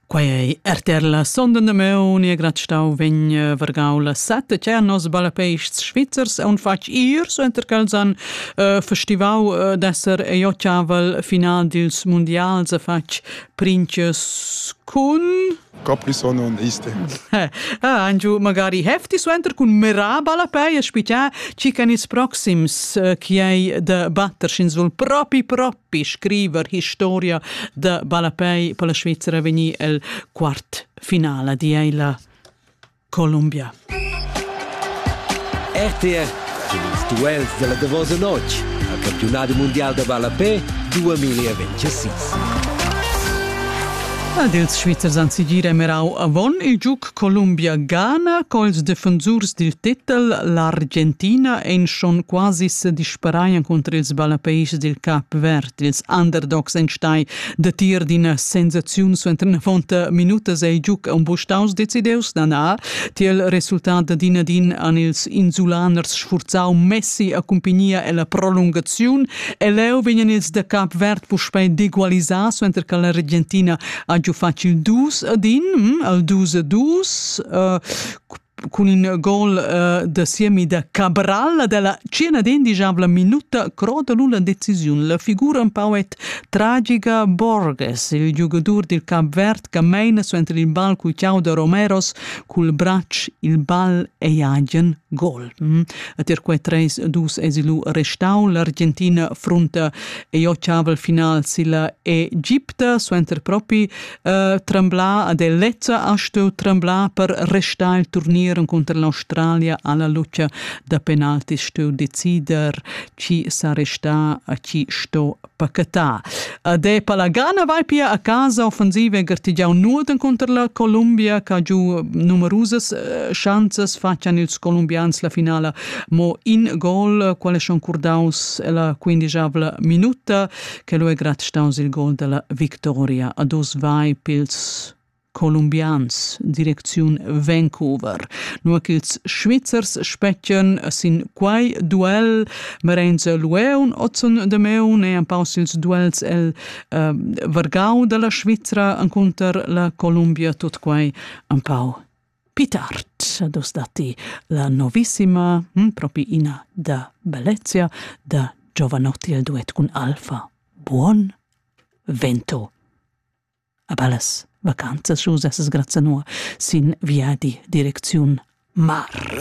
Quai ei RTR la sonda damaun e grat stau vegn eh, vargau la sette cernos balapeists svizzers e un fatg ir suenter ch'els han uh, festivau uh, d'esser eiochavel final dils mundials a fatg princes cun Caprison und Iste. ah, Angiu, magari hefti suenter cun merà balapei a spicia ci can ils proxims uh, chi ei de batter sch'ins vul propi propi per scriver historia da ballapei per la Svizzera vegnir el quart finala di ei la Columbia. RTR ils duels della davosa notg al campionat mondial da ballapei 2026. Ed ils Svizzers han sigir emerau avon il giug Columbia Ghana cons defensurs dil titel l'Argentina ein schon quasi sedisperaien cunter ils ballapeis dil Cap Verd. Ils underdogs ein stai datier d'ina sensaziun suenter navonta minutas ei giug embuschaus decideus da nar. Tiel resultat da din ad in han ils insulaners sfurzau Messi accumpagnia ella prolungaziun e leu vegnan ils da Cap Verd puspei d'egualisar suenter che l'Argentina ha giu fatg il dus ed in, hm, il dus e dus, uh, cun in gol uh, da siemi da Cabral della cena d'indigiabla minuta croda lu la decisiun. La figura un pau et tragica Borges, il giugadur dil Cap Verd che meina suenter il ball cu Tiao da Romeros cul bracc il ball e agen gol. Hm. Et er quei treis dus esilu restau l'argentina frunta e ho chaval final silla Egipta suenter propi eh, tremblar ad Elezza ha stueu tremblar per restar il turnier contro l'Australia alla luce da penalti stueu decider chi sa resta a chi sto pacatà. Ad e Palagana vai pia a casa offensiva e gartigiau Norden contro la Columbia, che ha giù numerosas eh, chances faccian ils colombians la finala Mo in gol, quale schon curdaus la quindicavla minuta, che lo è grad staus il gol della victoria. A dos vai pils colombians, direcziun Vancouver. Nur ch'ils Svizzers specchian sin quai duell Merenze Lueun, Ozon de Meun e an paus ils duells el eh, Vargau dalla Svizzera an counter la Columbia, tot quai an pau Pitart dos datti la novissima, hm, propi ina da bellezia, da Giovanotti il duet cun Alfa. Buon vento. A bellas vacanzas, schus essas grazie nur sin viadi direcziun mar.